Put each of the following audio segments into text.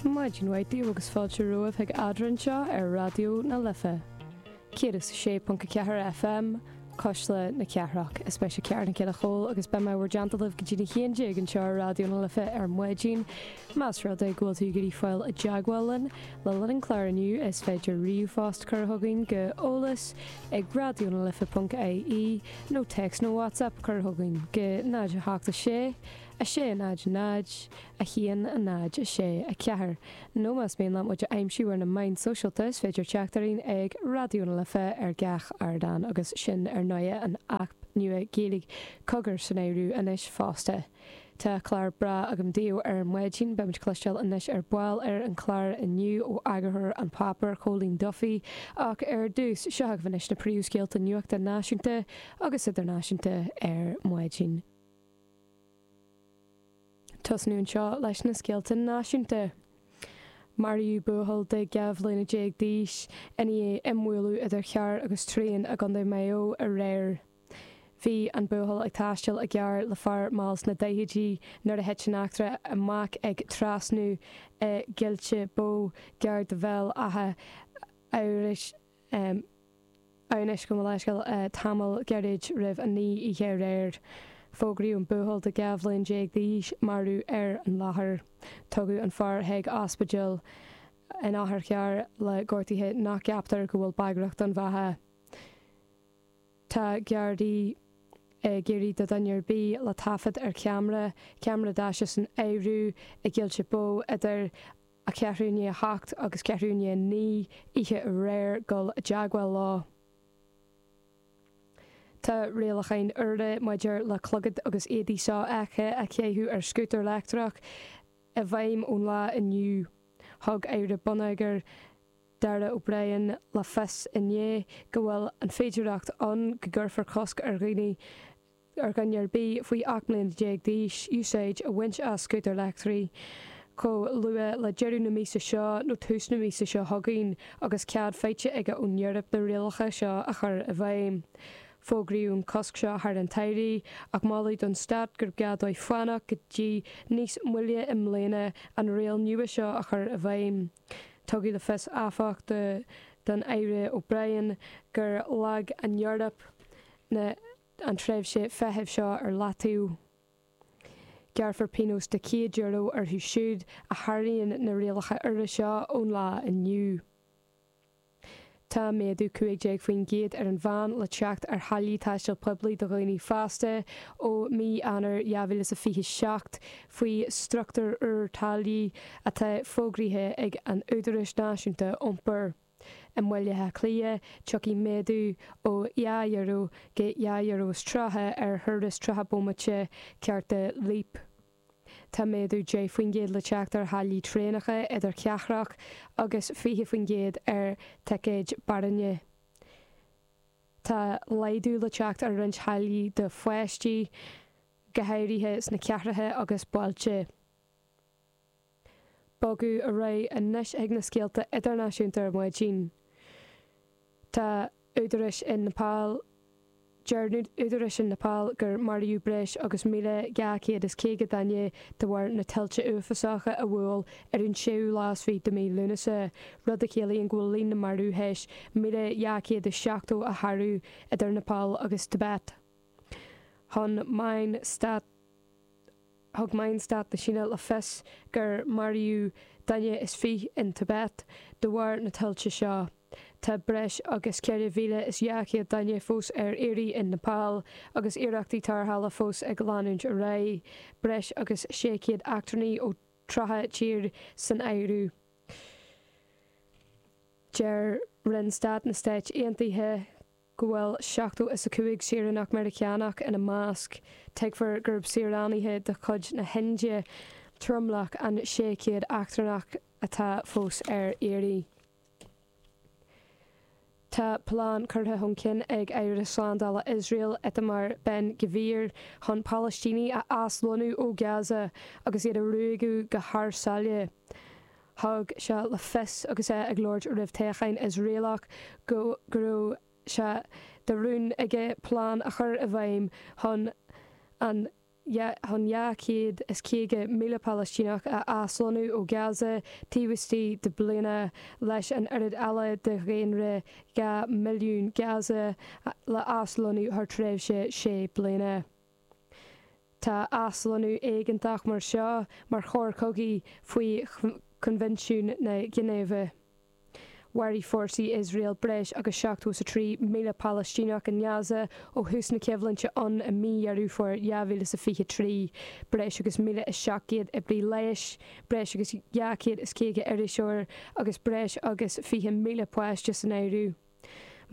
Maidin mhaith daoibh agus fáilte romhaibh chuig Eadra anseo ar Raidió na Life, 106.4 FM, Cuisle na Cathrach. Is mise Ciara Nic Giolla Chomhaill agus beidh mé i bhur dteannta go dtí na haon déag anseo ar Raidió na Life ar maidin. Más rud é go bhfuil tú ag iarraidh fáil i dteagmháil linn le linn an chláir inniu, is féidir ríomhphost cur chugainn go eolas ag raidionalife.ie nó téacs nó WhatsApp cur chugainn go 076 6 0 0 1 0 6 4 Nó más mian libh muid a aimsiú ar na meáin shóisialta is féidir teacht orainn ag Raidió na Life ar gach ardán agus sin ar ndóigh an aip nua Gaeilge Cogar san áireamh anois fosta. Tá clár breá againn daoibh ar maidin, beimid ag cloisteáil anois ar ball ar an chlár inniu ó eagarthóir An Páipéar, Cóilín Duffy ach ar dtús, seo agaibh anois na príomhscéalta nuachta náisiúnta agus idirnáisiúnta ar maidin. Tosnóidh anseo leis na scéalta náisiúnta. Maraíodh buachaill de dhá bhliain déag d'aois i ndiaidh imbhualadh idir charr agus traein i gContae Mhaigh Eo aréir. Bhí an buachaill ag taisteal i gcarr le fear mall sna daichidí nuair a thit an eachtra amach ag trasnú i gCoillte Bó, gar do Bhéal Átha hAmhnais gabh mo leithscéal. Tamall gairid roimh a naoi oíche aréir, fógraíodh an buachaill de dhá bhliain déag d'aois marbh ar an láthair. Tugadh an fear chuig ospidéal in otharcharr le gortuithe nach gceaptar go bhfuil bagrach don bheatha. Tá Gardaí ag iarraidh ar dhuine ar bith le taifead ar ceamra, ceamra daise san áireamh, i gCoillte Bó idir a ceathrú i ndiaidh a hocht agus ceathrú i ndiaidh a naoi oíche aréir gabháil i dteagmháil leo. Tá rialacháin úra maidir le clogad agus éadaí so-fheicthe a chaitheamh ar scútar leictreach i bhfeidhm ón lá inniu. Thug Aire Bonneagair, Darragh O'Brien, le fios inné go bhfuil an féidireacht ann go gcuirfear cosc ar dhaoine a ar dhuine ar bith faoi 18 mbliana d'aois úsáid a bhaint as scútair leictreacha chomh luath le deireadh na míosa seo nó tús na míosa seo chugainn agus cead faighte aige ón Eoraip na rialacha seo a chur i bhfeidhm. Fógraíodh an cosc seo thar an tsamhraidh ach moladh don stát gurbh gá dóibh fanacht go dtí níos moille i mbliana an riail nua seo a chur i bhfeidhm. Tugadh le fios áfach don Aire O'Brien gur leag an Eoraip na an tréimhse feithimh seo ar leataobh, gearrfar pionós de €100 orthu siúd a sháraíonn na rialacha úra seo ón lá inniu. Tá méadú 15% ar an mheán le teacht ar tháillí taistil poiblí do dhaoine fásta ó mí Eanáir 2027 faoi struchtúr úr táillí atá fógraithe ag an Údarás Náisiúnta Iompair. I mBaile Átha Cliath, tiocfaidh méadú ó dhá euro go dhá euro is tríocha ar thuras nócha bomaite cárta Leap. Tá méadú deich faoin gcéad le teacht ar tháillí traenacha idirchathrach agus fiche faoin gcéad ar thicéid Bus Éireann. Tá laghdú le teacht ar roinnt táillí do pháistí, go háirithe sna cathracha agus bailte. Bogadh ar aghaidh anois chuig na scéalta idirnáisiúnta ar mhaidin. Tá údaráis in Nepal Deir údaráis in Nepal gur maraíodh breis agus 1,250 duine de bharr na tuilte uafásacha a bhuail ar an séú lá is fiche de mhí Lúnasa, rud a chiallaíonn go bhfuil líon na marbh théis 1,270 a shárú idir Nepal agus Tibet. Thug meáin stáit. Thug meáin stáit na Síne le fios gur maraíodh duine is fiche in Tibet de bharr na tuilte seo. Tá breis agus 4,200 duine fós ar iarraidh in Nepal agus iarrachtaí tarrthála fós ag leanúint ar aghaidh. Breis agus 600 eachtrannaigh ó 30 tír san áireamh. Deir Roinn Stáit na Stát Aontaithe. go bhfuil seachtó is a cúig saoránach Meiriceánach ina measc, tuigtear gurb saoránaithe de chuid na hIndia tromlach an sé chéad eachtrannach atá fós ar iarraidh. Tá plean curtha chun cinn ag Aire Slándála Iosrael Itamar Ben Gvir chun Palaistínigh a aslonnú ó Gaza agus iad a ruaigeadh thar sáile, Thug sé le fios agus é ag labhairt roimh thoghchán Iosraelach go go raibh sé de rún aige plean a chur i bhfeidhm chun chun 250,000 Palaistíneach a aslonnú ó Gaza taobh istigh de bhliain leis an oiread eile de dhaonra dhá mhilliún Gaza le haslonnú thar tréimhse sé bliana. Tá aslonnú éigeantach mar seo mar choir cogaidh faoi Choinbhinsiún na Ginéive. Mharaigh fórsaí Iosrael breis agus 73,000 Palaistíneach i nGaza ó thús na coimhlinte ann i mí Dheireadh Fómhair 2023, breis agus 1,700 oibrí leighis, breis agus 250 iriseoir agus breis agus 20,000 páiste san áireamh.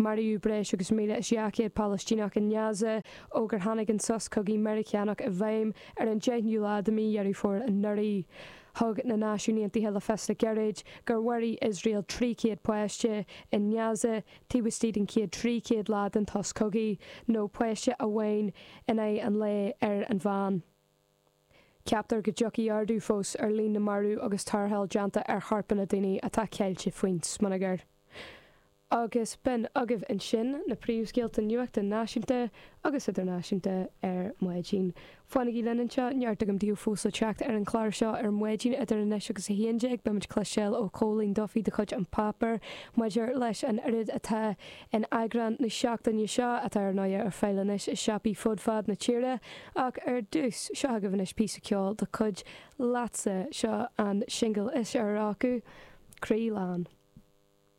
Maraíodh breis agus míle is dhá chéad Palaistíneach i nGaza ó gur tháinig an sos cogaidh Meiriceánach i bhfeidhm ar an deichiú lá de mhí Dheireadh Fómhair anuraidh. Thug na Náisiúin Aontaithe le fios le gairid gur mharaigh Iosrael trí chéad páiste i nGaza taobh istigh den chéad trí chéad lá den tsos cogaidh, nó páiste amháin in aghaidh an lae ar an mheán. Ceaptar go dtiocfaidh ardú fós ar líon na marú agus tarrtháil déanta ar chorpanna daoine atá ceilte faoin smionagar. Agus b'in agaibh ansin na príomhscéalta nuachta náisiúnta agus idirnáisiúnta ar maidin. Fanaigí linn anseo, neart againn daoibh fós le teacht ar an gclár seo ar maidin. Idir anois agus a haon déag beimid ag cloisteáil ó Chóilín Duffy de chuid An Páipéar maidir leis an oiread atá In eagrán na seachtaine seo, atá ar ndóigh ar fáil anois i siopaí fud fad na tíre, ach ar dtús, seo agaibh anois píosa ceoil de chuid Leatsa, seo an singil is fhearr acu, Croí Lán.